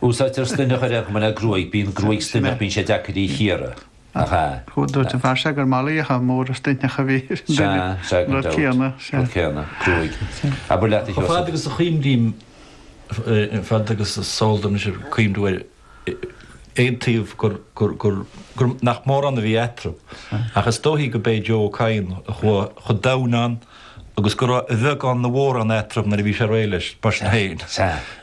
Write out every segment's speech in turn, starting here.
Úsáidtear stoithneach ar aon chuma le gruaig, bíonn gruaig stoithneach, bíonn sé deacair í chíoradh, nach ea? Dúirt an fear seo gur malaíocha móra stoithneacha a bhí ar duine. Sea, sea, go deimhin. Rud céanna, gruaig. Abair leat, a Sheosaimh. Fad agus a chuimrím, fad agus is eol dom, is é an cuimriú ar aon taobh gur, gur, nach mórán a bhí eatarthu. Ach is dóichí go b'é Joe Ó Cadhain a chuaigh chomh domhain ann. agus go raibh a bheagán nó a mhórán eatarthu nuair a bhí sé réidh leis, mar sin féin.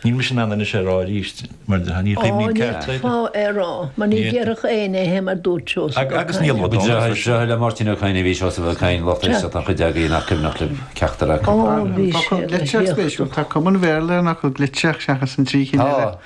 Níl mise in ann anois é a rá arís, mar ní chuimhním céard faoi. Ó, níl fáth é a rá, mar ní déarfadh éinne é mar dúirt Seosamh Ó Cadhain. Agus níl fhios agam. Is deartháir le Máirtín Ó Cadhain a bhí i Seosamh Ó Cadhain, lucht éisteachta an chuid agaibh nach cuimhneach libh ceachtar acu. Ó, bhí sé ina thaobhachtaí. Tá cuma an Bhéarla ann acu, Glitch, seachas an trí chinn eile. Tá.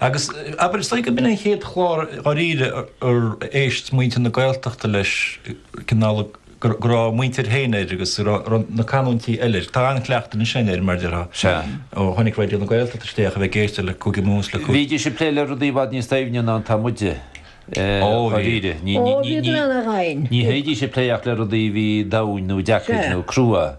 Agus abair, is dóigh gurb in é an chéad chlár dháiríre ar éist muintir na Gaeltachta leis, cineál go raibh a muintir féin air agus go raibh na canúintí eile air. Tá an-chleachtadh ansin air, mar a déarfá, ó tháinig Raidió na Gaeltachta isteach a bheith ag éisteacht le Cúige Mumhan is le Cúige. Bhídís ag plé le rudaí i bhfad níos doimhne ná atá muide, dháiríre. Ní bhídís ag plé ach le rudaí a bhí domhain nó deacair nó crua.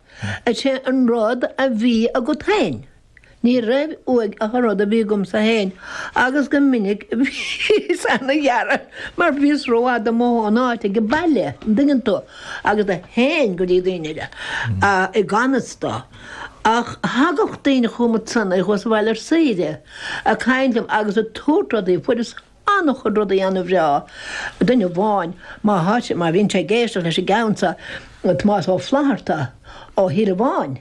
Is é an rud a bhí agat féin. Ní raibh uaidh ach an rud a bhí agamsa féin agus go minic bhíos ana-ghearra mar bhíos rófhada imithe ón áit ag baile, an dtuigeann tú, agus théinn go dtí daoine eile i ganfhios dó. Ach thagadh daoine chugam ansan, iad thuas sa bhaile ar saoire, ag caint liom agus ag tabhairt rudaí, fuaireas. An-chuid rudaí an-bhreá. Duine amháin, má thá sé, má bhíonn sé ag éisteacht leis an gceann seo, Tomás Ó Flaithearta ó Thíorabháin,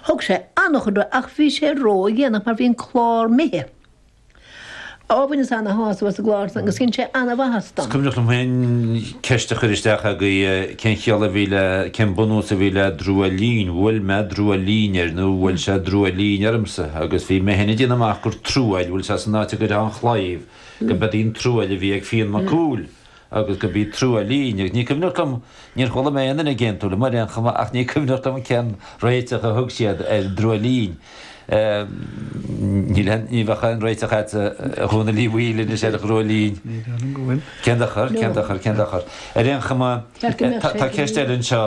thug sé an-chuid uaidh ach bhí sé ró-dhéanach mar bhí an clár imithe. Ó, bhaineas ana-shásamh as an gclár san agus dhein sé ana-mhaitheas dom. Is cuimhneach liom féin ceist a chur isteach agaibh, cén chiall a bhí le, cén bunús a bhí le drúilín, bhuail mé drúilín air nó bhuail sé drúilín ormsa agus bhí mé féin ag déanamh amach gur truaill, bhuail sé san áit a gcuirfeá an claíomh, go mba í an truaill a bhí ag Fionn Mac Cumhaill agus go mba í truaillín, agus ní cuimhneach liom, níor chuala mé aon duine ag aontú liom ar aon chuma ach ní cuimhneach liom cén réiteach a thug siad ar drúilín. Ní bheadh aon réiteach a't, a Dhónaill Uí Bhaoill, anois ar drúilín. Ní déarfainn go bhfuil. Cén dochar, cén dochar, cén dochar? Ar aon chuma, tá ceist eile anseo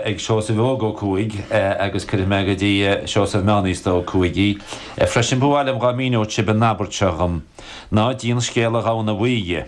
ag Seosamh Óg Ó Cuaig agus cuirfidh mé go dtí Seosamh Meánaosta Ó Cuaig í freisin. Ba mhaith liom dhá míniú sibh an abairt seo dhom, Ná díon scéal an ghamhna bhuí dhe.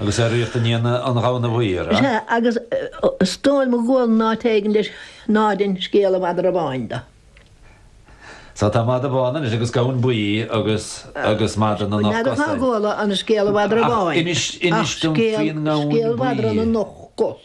Agus tóraíocht i ndiaidh an ghamhna bhuí, a. Sea, agus is dóigh liom go bhfuil in áit éigin leis, ná dein scéal an mhadra bháin de. Sea, tá madadh bán anois agus gamhain buí agus, agus madra na n-ocht gcos. N'fheadar cá gcuala an scéal an mhadra bháin. Ach inis dom faoin ngamhain buí. Ach scéal, scéal mhadra na n-ocht gcos.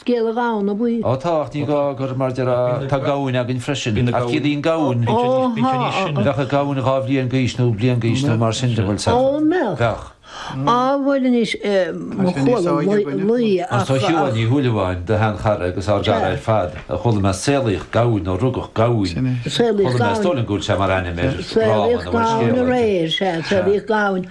Scéala Gamhna Buí. Ó tá, ach ní gá gur mar déarfá, tá gamhain againn freisin, ach ciallaíonn gamhain, bheadh ag gamhain dhá bhliain d'aois nó bliain d'aois nó mar sin de, bhuel sa, bheadh. Á, bhuel anois, chuala laoi a. Ach tá Siobhán Ní Shúilleabháin, do sheanchara agus ár gcara ar fad, chuala mé saolaíodh gamhain nó rugadh gamhain, chuala mé, is dóigh liom go bhfuil sé mar ainm air, rámha nó rud scéal. Saolaíodh gamhain aréir, sea, saolaíodh gamhain.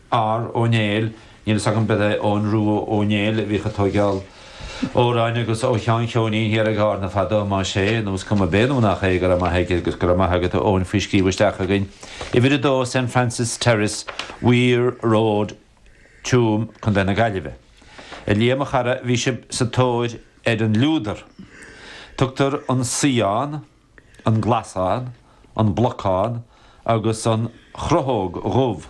R, Ó Néill, níl fhios agam, b'fhéidir Eoghan Rua Ó Néill a bhíodh ag tóigeáil amhráin agus ó Sheán Cheoinín thiar i gCarna fadó, más é, nó is cuma, b'é nó nach é, go raibh maith aige agus go raibh maith agat a Eoghain faoi scríobh isteach againn. Uimhir 2 Saint Francis Terrace, Weir Road, Tuam, Co. na Gaillimhe. A Liam a chara, bhí sibh sa tóir ar an liúdar. Tugtar an Saíán, an Glasán, an Blocán agus an Chrothóg Dhubh.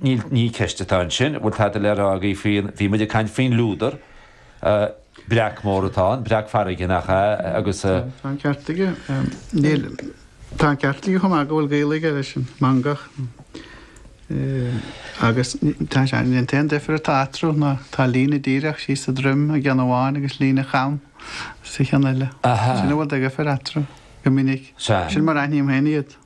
Níl, ní ceist atá ansin. Bhfuil tada le rá agaibh faoin, bhí muid ag caint faoin lúdar, breac mór atá ann, breac farraige nach ea, agus. Tá an ceart aige. Níl, tá an ceart aige chomh maith go bhfuil gaol aige leis an mangach agus tá sé, an t-aon difear atá eatarthu ná tá líne díreach síos sa droim i gceann amháin agus líne cham sa cheann eile. Sin an rud de dhifear eatarthu go minic. Sea. Sin mar a aithním féin iad.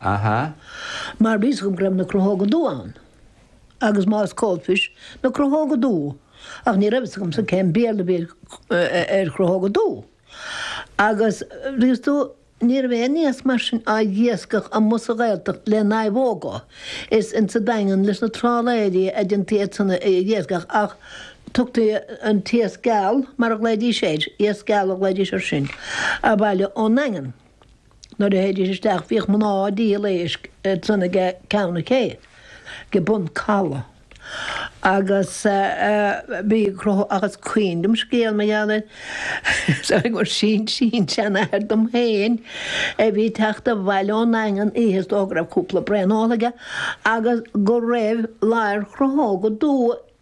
Aha. Mar bhí a fhios agam go raibh na crothóga dubha ann. Agus más coalfish na crothóga dubha. Ach ní raibh fhios agamsa cén Béarla a bhí ar chrothóga dubha. Agus tuigeann tú, ní raibh aon iasc mar sin á iascach amuigh sa Ghaeltacht le naomhóga. Is sa Daingean leis na trálaeirí a dhéantaí iad san a iascach ach thugtaí an t-iasc geal, mar a ghlaoidís air, iasc geal a ghlaoidís ar sin, abhaile ón nDaingean. Nuair a théidís isteach bhíodh mná ag díol éisc ansan ag ceann an ché, ag Bun Calaidh. Agus bhíodh agus cuimhin liom scéal mar gheall air. Is dóigh gur sin-sin-seanathair dom féin a bhí ag teacht abhaile ón nDaingean oíche is dóigh go raibh cúpla braon ólta aige agus go raibh ladhar crothóga dubha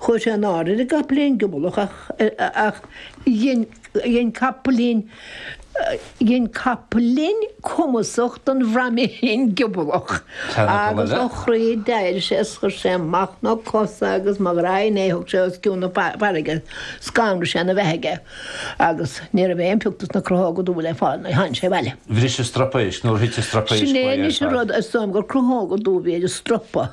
Chuir sé in airde ar an gcapaillín giobalach ach dhein capaillín dhein capaillín cumasach den bhraiméirín giobalach agus ó chroí d'éirigh sé is chuir sé amach na cosa agus mo ghraidhin é thóg sé os cionn na farraige scanraigh sé an beithíoch aige agus ní raibh aon phioc dos na crothóga dubha le fáil nuair a tháinig sé abhaile. Bhris an stropa éisc nuair a thit an stropa éisc. Sin é anois an rud is dóigh liom gur crothóga dubha a bhí sa stropa.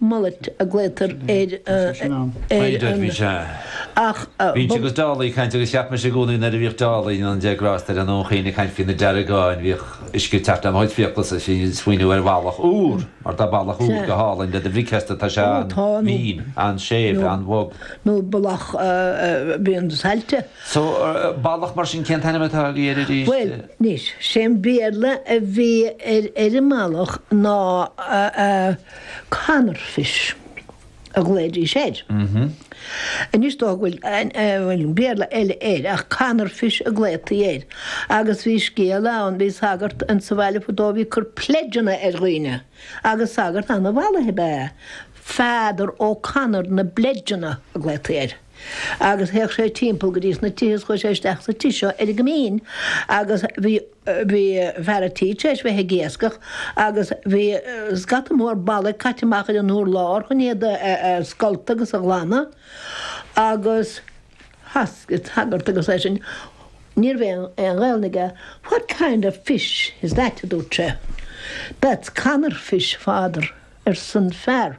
Mullet a glaotar ar an. Bhínnse agus Dálaigh ag caint agus cheap mise i gcónaí nuair a bhíodh Dálaigh, go ndéana Dia grásta air, i nDún Chaoin ag caint faoi na deargáin, bhíodh uisce ag teacht le mo chuid fiaclasa ag smaoineamh ar bhallach úr, mar tá ballach úr go hálainn le do bhricfeasta, tá sé an-mhín, an-séimh, an-bhog. nó ballach bréan saillte. So, ballach mar sin, cén t-ainm atá agaibh air arís? Bhuel, anois, sé an Béarla a bhí ar an mballach ná. Conor Fish a ghlaoidís air. Anois dócha go bhfuil Béarla eile air ach Conor Fish a glaodhtaí air agus bhí scéal ann, bhí sagart insa bhaile fadó a bhí ag cur pledgeanna ar dhaoine agus sagart ana-mhallaithe ab ea é. Father O'Conor na bpledgeanna a glaodhtaí air. agus théadh sé timpeall go dtís na tithe is chuaigh sé isteach sa tigh seo ar an gCoimín agus bhí, bhí fear a' tí tar éis bheith ag iascach agus bhí scata mór ballaigh caite amach ar an urlár chun iad a scoltadh agus a ghlanadh agus asked an sagart agus é sin, ní raibh aon Ghaelainn aige, what kind of fish is that a dúirt sé. That's Conor fish, father, arsan fear.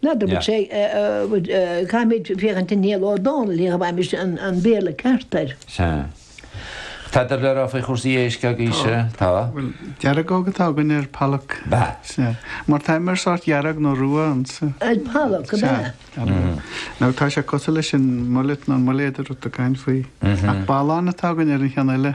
Ná dúirt sé, caithfimid féachaint i Niall Ó Dónaill, ní gheobhaimis an Béarla ceart air. Sea. Tá do bhreithlá faoi chúrsaí éisc agaibhse, tá? Bhuel, deargóg atá againn ar pollock. Ab ea? Sea. Mar tá mar sórt dearg nó rua ansa. Ar pollock, ab ea? Nó tá sé cosúil leis an mullet nó an muiléad a raibh tú ag caint faoi. Ach ballán atá againn ar an cheann eile.